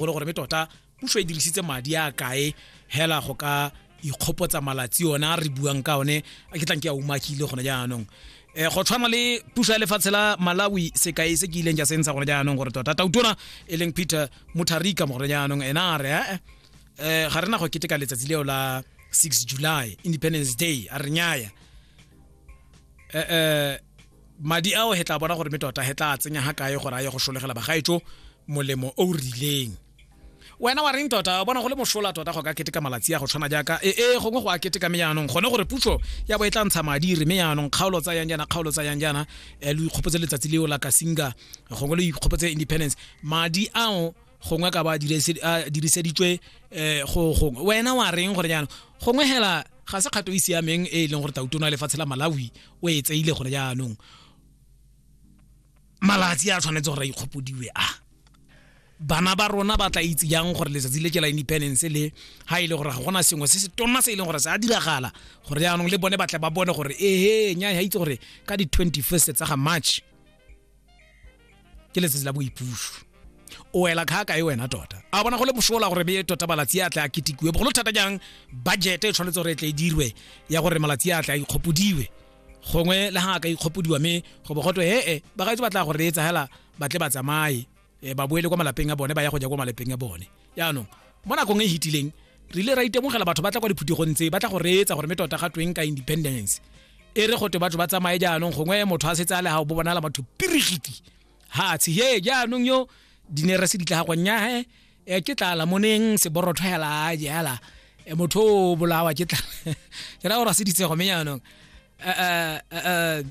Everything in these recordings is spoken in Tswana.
o le gore me tota puso e dirisitse madi a kae hela go ka ikgopotsa malatsi ona re buang ka one a ke tlang ke a umakile gone jaanong eh go tshwana le puso ya lefatshe la malawi sekai se ke ileng ja sentsha gone jaanong gore tota tautona e leng peter mutharika mo gone jaanong ena a re eh, eh ga rena go keteka letsatsi leo la 6 july independence day a re nyaya eh eh madi ao he tla bona gore me tota he tla tsenya ga kae gore a ye go sholegela bagaetso molemo o o rileng wena wa reng tota bona go le mosola tota go ka keteka malatsi a go tshwana jaaka e e gongwe go a keteka me yaanong gone gore puso ya bo e tla ntsha madi re me yaanong kgaolo tsa yang jaana kgaolo tsa yang jaana um lo ikgopotse letsatsi leo la kasinga gongwe lo ikgopotse independence madi ao gongwe ka ba diriseditswe um go gongwe wena wa reng gore jaanong gongwe hela ga se kgato e siameng e e leng gore tautona lefatshe la malawi o e tseile gore jaanong malatsi a tshwanetse gore a ikgopodiwe a bana ba rona ba tla itse jang gore letsatsi le ke la independence le ha e le gore ga gona sengwe se se tona se e leng gore se a diragala gore jaanong le bone ba tle ba bone gore ehe nya ha itse gore ka di 21st tsa ga march ke letsatsi la boipuso o ela kga kae wena tota a bona go le bosola gore beye tota malatsi a tla a ketikiwe bogolo thata jang budget e tshwanetse gore e tle e dirwe ya gore malatsi a tla a ikgopodiwe gongwe le ga a ka ikgopodiwa mme go bo gotwe hee bagaetso ba tla go reetsa hela ba tle ba tsamaye eh, ba boele kwa malapeng a bone ba ya go ja kwa malapeng a bone yaanong mo nakong e hitileng re ile ra itemogela batho ba tla kwa diphuthegong tse ba tla go reetsa gore me tota ga tweng ka independence e re gote batho ba tsamaye jaanong gongwe motho a setse a le gago bo bonala batho pirigiti ha tshe ye jaanong yo dinere se ditla gagwa nyahe e ke tla la moneng se borotho hela a jela e motho o bolawa ke tla ke ra gore se ditsego me jaanong eh eh eh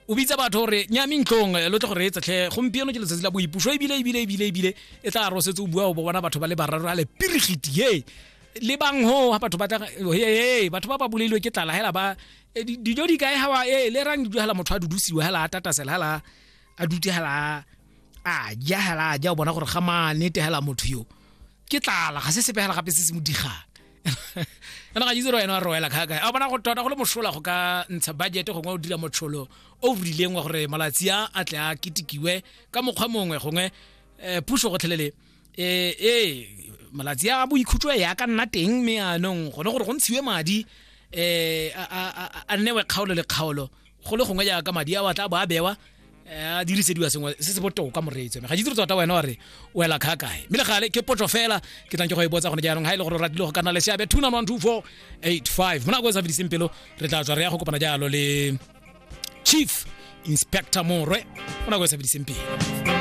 o bitsa batho gore nyame ntlong eh, lo tle go reetsa tlhe gompieno ke letsatsi la boipuso ebile ebile ebile ebile e tla ro setse o bua o bona batho ba le bararo a le pirigiti ye le bang ho ha batho ba tla he batho ba ba buleilwe ke tlala hela ba eh, di- dijo di kae ha wa e le rang dijo hela motho a dudusiwa hela a tatasela hela a dute hela a ja hela a ja o bona gore ga manete hela motho yo ke tlala ga se sepe hela gape se se mo digang kana ga itse re wena wa roela kgaka a bona go tota go le mosola go ka ntsha budget gongwe o dira motsholo o o rileng wa gore malatsi a a tle a ketikiwe ka mokgwa mongwe gongwe um puso gotlhelele ee ee malatsi a boikhutso e ya ka nna teng mme anong gone gore go ntshiwe madi um a nnewe kgaolo le kgaolo go le gongwe jaaka madi a wa tla bo a bewa eh, a dirisediwa sengwe se se botoka moreetsi ga ditse tota wena wa re o ela kga kae mme le gale ke potso fela ke tlang ke go e botsa gone jaanong ga e le gore o ratile go ka nna le seabe two nine one two four eight five mo nako e sa fediseng pelo re tla tswa re ya go kopana jalo le chief inspector morwe mo nako e sa fediseng pelo